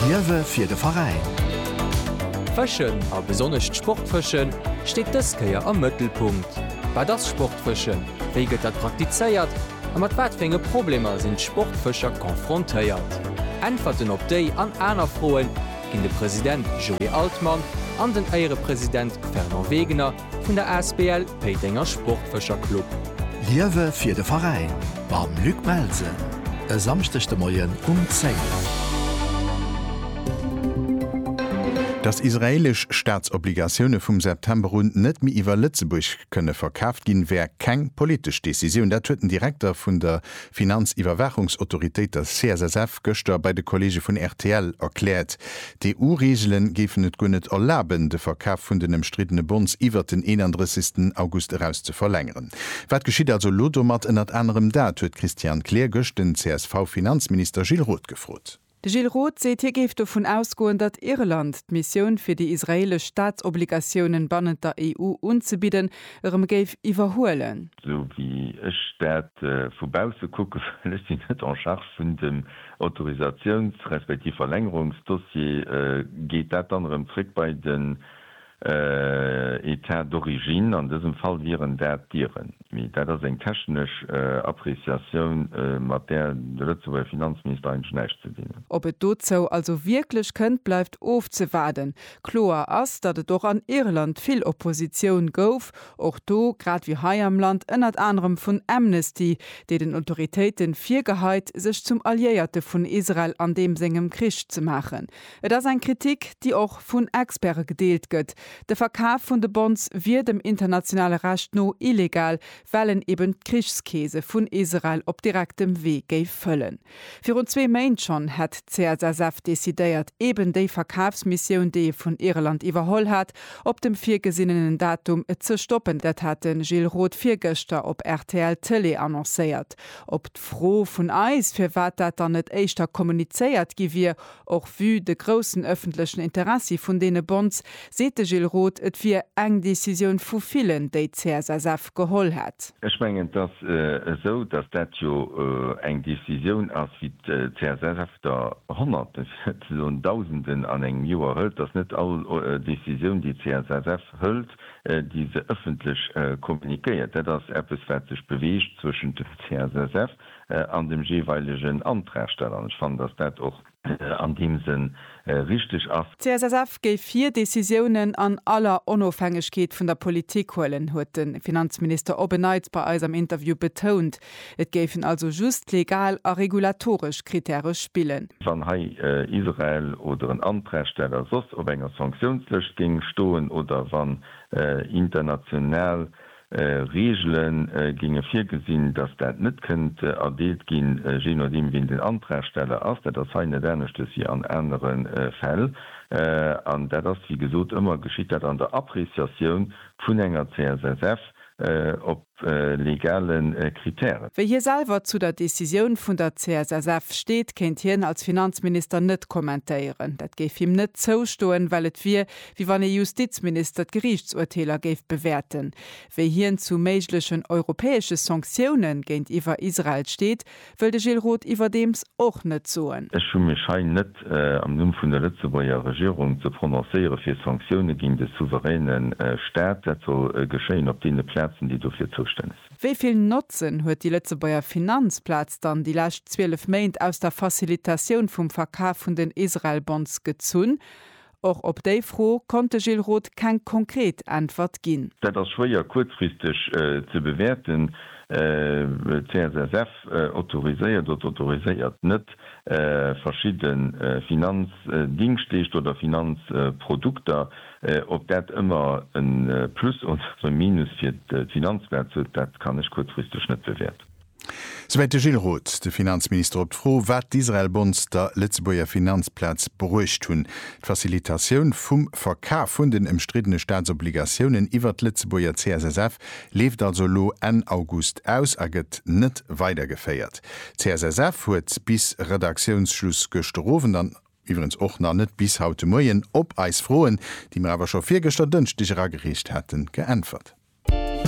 Liewe fir de Veräin! Fëschen, a besonnesch d'Sportfëschen, steet dës Kéier am Mëttelpunkt. Wat ass Sportfëschen, wéi gëtt dat praktizéiert a mat wat fir enge Problemer sinn d'Sportfëscher confrontéiert? Äntwerten op déi an aner Froe ginn de President Joé Altmann an den Éierepresident Fernand Wegener Vun der Asbl Péitenger Sportfëscherclub. Liewe fir de Veräin mam Luc Melsen e Samschdeg de Moien um 10. Dass israeelesch Staatsobligatioune vum September un net méi iwwer Lëtzebuerg kënne verkaaft ginn, wär keng politesch Decisioun. Dat huet den Direkter vun der Finanziwwerwaachungsautoritéit, der CSSF, gëschter bei de Kolleege vun rtl erkläert. D'EU-Reegele géifen et guer net erlaben, de Verkaf vun den ëmstriddene Bonds iwwert den 31 August eraus ze verlängeren. Wat geschitt also elo domat? Ënnert anerem dat huet d'Christiane Kleer gëscht den CSV-Finanzminister Gilles Roth gefrot. De Gilles Roth seet, hie géif dovun ausgoen, datt Irland d'Missioun, fir déi israeelesch Staatsobligatiounen bannent der EU unzebidden, erëm géif iwwerhuelen. Esou wéi ech dat vu bausse kucken, well ech sinn net en charge vun dem Autorisatiouns respektiv Verlängerungsdossier, geet dat dann erëm zréck bei de Etat d'origine, an dësem Fall wieren dat d'Dieren. Mee dat ass eng technesch Appreciatioun, mat där de Lëtzebuerger Finanzminister eigentlech näischt ze dinn huet. Ob et dozou also wierklech kënnt, bleift ofzewaarden. Kloer ass, datt et och an Irland vill Oppositioun gouf, och do, grad wéi hei am Land, ënnert anerem vun Amnesty, déi den Autoritéiten virgeheit, sech zum Alliéierte vun Israel an deem sengem Krich ze maachen. Et ass eng Kritik, déi och vun Experte gedeelt gëtt. De Verkaf vun de Bonds wier dem internationale Recht no illegal, well en eben d'Krichskeese vun Israel op direktem Wee géif fëllen. Virun zwee Méint schonn hätt d'CSSF decidéiert, eben déi Verkafsmissioun, déi e vun Irland iwwerholl hat, op dem virgesinnenen Datum ze stoppen. Dat hat de Gilles Roth virgëschter op rtl Tëlee annoncéiert. Op d'Fro vun eis, firwat dat dann net éischter kommunizéiert gi wier, Och vue de groussen ëffentlechen Interessi vun deene Bonds, seet de Gilles Roth, et wier eng Decisioun vu villen, déi d'CSSF geholl hätt. Ech mengen, et ass esou, datt dat jo eng Decisioun ass, wéi d'CSSF der Honnerten, fir net ze soen Dausenden an engem Joer hëlt. Et ass net all Decisioun, déi d'CSSF hëlt, déi se ëffentlech kommuniquéiert. Dat ass eppes, wat sech beweegt zwëschent dem CSSF an dem jeeweilegen Antragsteller. An ech fannen, dass dat och an deem Sënn richtig ass. D'CSSF géif hir Decisiounen an aller Onofhängegkeet vun der Politik huelen, huet de Finanzminister op en Neits bei eis am Interview betount. Et géifen also just legal a regulatoresch Krittäre spillen. Wann hei Israel oder en Antragsteller soss op enger Sanktiounslëscht géing stoen oder wann international Reegele géinge virgesinn, datt dat net kënnt erdeelt ginn, jee nodeem wien den Antragsteller ass. Dat ass hei net aneschters wéi an anere Fäll. An dat ass, wéi gesot, ëmmer geschitt dat an der Appreciatioun vun enger CSSF op legale Kritären. Wéi hie selwer zu der Decisioun vun der CSSF steet, kéint hien als Finanzminister net kommentéieren. Dat géif him net zoustoen, well et wier, wéi wann ee Justizminister d'Geriichtsurteeler géif bewäerten, wéi hien zu méiglechen europäesche Sanktioune géintiwwer Israel steet, wëll de Gilles Roth iwwerdeems och net soen. Ech hu mech hei net am Numm vun der Lëtzebuerger Regierung ze prononcéiere fir Sanktioune géint e souveräne Staat. Dat soll geschéien op deene Plazen, déi dofir zoustänneg sinn. Wéi vill Notzen huet déi Lëtzebuerger Finanzplaz dann déi lescht 12 Méint aus der Facilitatioun vum Verkaf vun den Israel-Bonds gezunn? Och op déi Fro konnt de Gilles Roth keng konkret Äntwert ginn. Dat ass schwéier kuerzfristeg ze bewäerten. D'CSSF autoriséiert oder autoriséiert net verschidde Finanzdingschleeschter oder Finanzprodukter. Ob dat ëmmer e Plus oder e Minus fir d'Finanzplaz huet, dat kann ech kuerzfristeg net bewäerten. Souwäit de Gilles Roth, de Finanzminister, op d'Fro, wat d'Israel-Bonds der Lëtzebuerger Finanzplaz bruecht hunn. D'Facilitatioun vum Verkaf vun den ëmstriddene Staatsobligatiounen iwwert d'Lëtzebuerger CSSF leeft also elo Enn August aus a gëtt net weidergeféiert. D'CSSF huet bis Redaktiounsschluss gëschterowend an iwwregens och nach net bis haut de Moien op eis Froen, déi mir awer scho virgëschter Dënschdeg eragereecht haten, geäntwert.